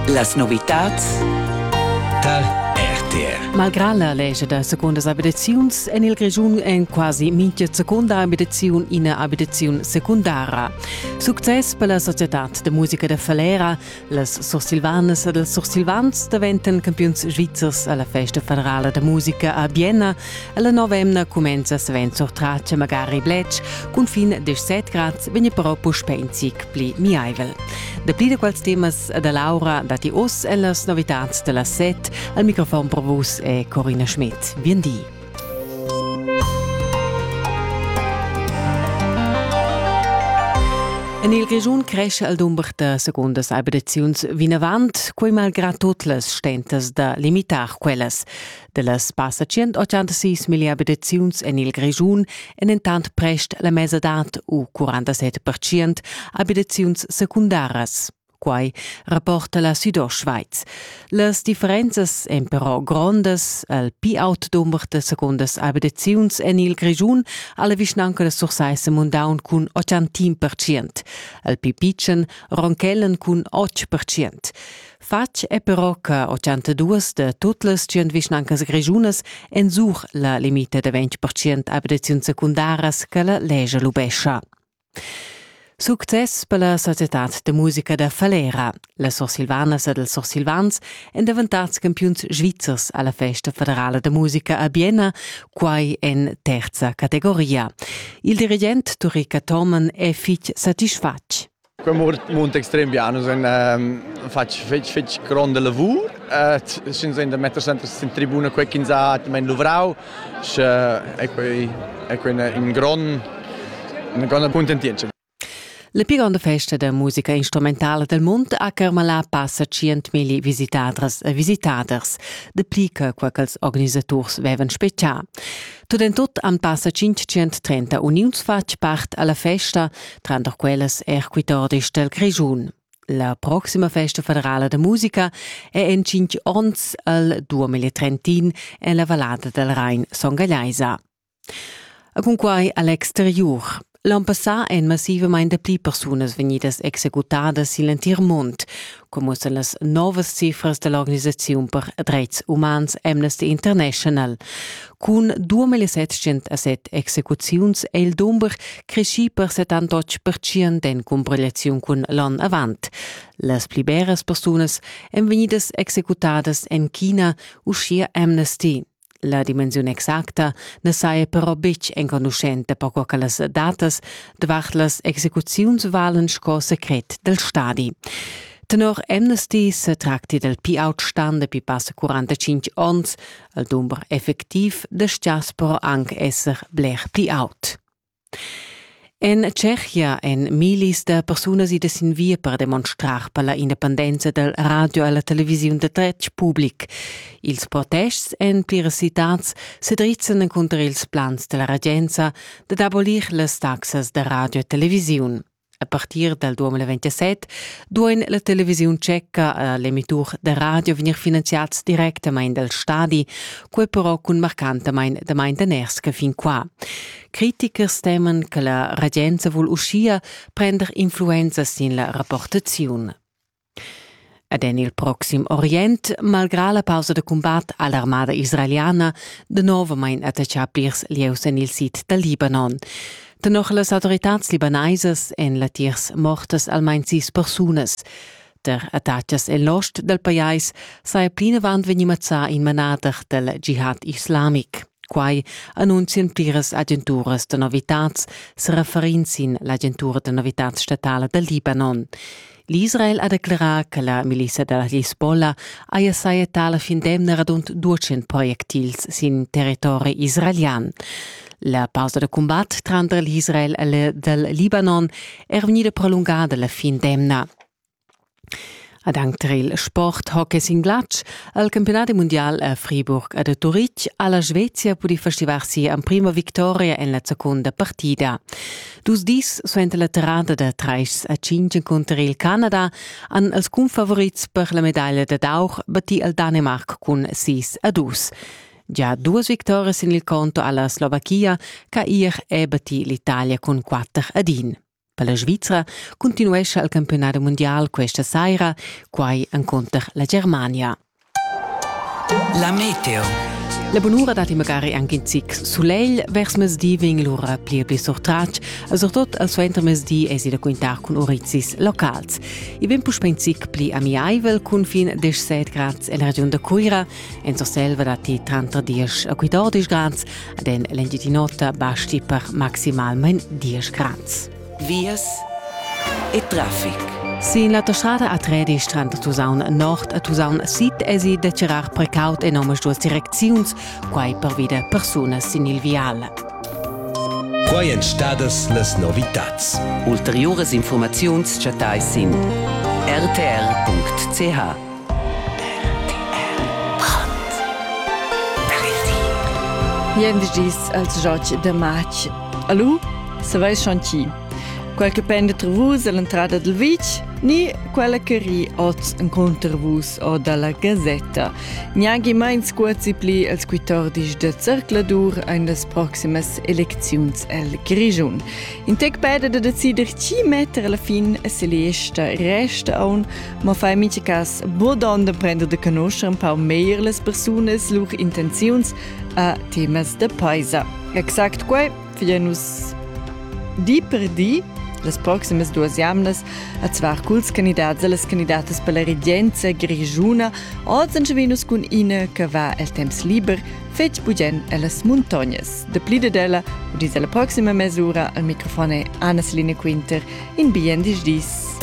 Las novitads tar RTR. Malgrà la legge da secondas abitaziuns en il Grischun en quasi mintga seconda abitaziun ina abitaziun secundara. Success per la societad de musica de Falera. Las sursilvanas ed ils sursilvans daventan campiuns svizzers alla festa federala de musica a Bienna La novemna cumenza svent sur trace magari bletsch, cun fin 17 grad vegni però puspè in zic pli miaivel. Dapli da quels temas da Laura datti oz e las novitads da las set. Al microfon pro vus è Corina Schmidt. Bien di. En il Grischun cresce al dumber da segundas abitaziuns vinavant, quei malgrad tut las stentas da limitar quellas. Dellas passa 186 mila abitaziuns en il Grischun èn entant prest la mesadad u 47 percent abitaziuns secundaras. Quai rapporta la Südostschweiz. Las differenzas èn però grondas. El pi aut dumber da secondas abitaziuns en il Grischun ha la vischnanca da Sursaissa mundaun cun 80 percent. El pi pitschen ronchellen cun 8 percent. Fatg è però che 82 da tut las 100 vischnancas grischunas ensuch la limita da 20% abitaziuns secundaras che la legge lubescha. Success per la societad de musica da Falera. La Sursilvanas ed els Sursilvans èn daventads campiuns svizzers alla festa federala de musica a Bienna, quai en terza categoria. Il dirigent Turica Thormann è fitg satisfatg. Quei mund extrem bien, nus ein fatg fetg, fetg gronda lavur, sch'ins ein da metter sempre sin tribuna quei ch'ins ha atgnamein luvrau, sche ei quei, ei quei in grond, una gronda cuntentientscha. La pli gronda festa da musica instrumentala del mund ha carmalà passa tschientmilli visitadras e visitaders, de pli che quei ch'ils organisaturs vevan spetgà. Tut en tut han passa 530 uniuns fatg part alla festa, tranter quellas er quitordis del Grischun. La proxima festa federala de musica è en cinc onns al 2031 en la vallada del Rhein Songallaisa. A cunquai all'exteriur L'onn passà èn massivamain dapli persunas vegnidas executadas sin l'entir mund, come muossan las novas cifras da l'organisaziun per dretgs umans Amnesty International. Cun 2707 execuziuns è il dumber creschì per 78% en cumpilaziun cun l'onn avant. Las pli beras persunas èn vegnidas executadas en China, uschia Amnesty. La dimensiun exacta na saja però betg enconuschenta per co che las datas davart las execuziuns valen sco secret dal stadi. Tenor Amnesty se tracti del pi-outstand dapi passa 45 onns. Il dumber effectiv destias però anc esser bler pli aut. En Tschechia èn millis da persunas idas sin via per demonstrar per la independenza dal radio e la televisiun da dretg public. Ils protests en pliras citads se drizzan encunter ils plans della regenza dad abolir las taxas da radio e televisiun. A partir dal 2027 duain la televisiun tscheca e l'emitur da radio vegnir finanziads directamain dal stadi, quai però cun marcantamain damain daners che fin qua. Critichers teman che la regenza vul uschia prender influenza sin la rapportaziun. Ed en il proxim Orient, malgrà la pausa da cumbat ha l'armada israeliana danovamain attaccà plirs lieus en il sid dal Libanon. Tenor las autoritads libanaisas èn latiers mortas almain sis persunas. Tar attacas en l'ost dal pajais saja plinavant vegnì mazzà in manader dal jihad islamic. Quai annunzian pliras agenturas da novitads, se referin sin l'agentura da novitads statala dal Libanon. L'Israel ha declerà che la milissa da Hezbollah haja sajettà la fin d'emna radund 200 projectils sin territori israelian. La pausa da cumbat tranter l'Israel e il dal Libanon è vegnida prolungada la fin d'emna. Ad anc tar il sport hockey sin glatsch ha il campionat mundial a Friburg a Turitg ha la Svezia pudì festivar sia emprima victoria en la secunda partida. Dus dis suenter la terrada da trais a cinc encunter il Canada han els cunfavorits per la medaglia dad aur battì il Danimarc cun sis a dus. Già duas victorias sin il conto alla Slovachia che ier è battì l'Italia cun quatter ad in. Per la Svizzera continuescha il campionat mondial questa saira, quai encunter la Germania. La meteo. La bunura dat magari anche in zic sulegl vers mesdi vegn lura pli e pli surtratg, e surtut al suenter mesdi esi da quintar cun urizis locals. I vegn puspè in zic pli amiaivel cun fin 17 grads en la regiun da Cuira, en Surselva datti tranter 10 e 14 grads, ad en l'Engitinota basti per maximalment 10 grads. vias e traffic. Sin l'autostrada a Tredisch tranter Tusaun Nord e Tusaun Sid esi da tirar precaut en omaduas direcziuns, quai pervi da persunas sin il vial. Quai èn stadas las novitads. Ulteriuras informaziuns chattai sin rtr.ch. Jendis als Joc de Matsch Alu, saveis schon chi. Quel che penda tra vus all'entrada dal vitg ni quella che ri oz encunter vus o dalla gasetta. Gnagi mein scuozi pli als quitordis da zercladur ein las proximas elecziuns el Grischun. In tec peda da decider chi metter alla fin e se lesta resta aun, ma fai mincha cas bodon da prender de conoscer un pau meglier las persunas lur intenziuns a temas da paisa. Exact quai vien nus di per di las proximas duas jamnas a zvar culs candidats e las candidatas per la regenza grigiuna. Oz en Venus cun ina che va el temps liber fetg bugen ellas muntognas. De pli de della, u dis alla proxima mesura, al microfon è Anna Selina Quinter in bien dis dis.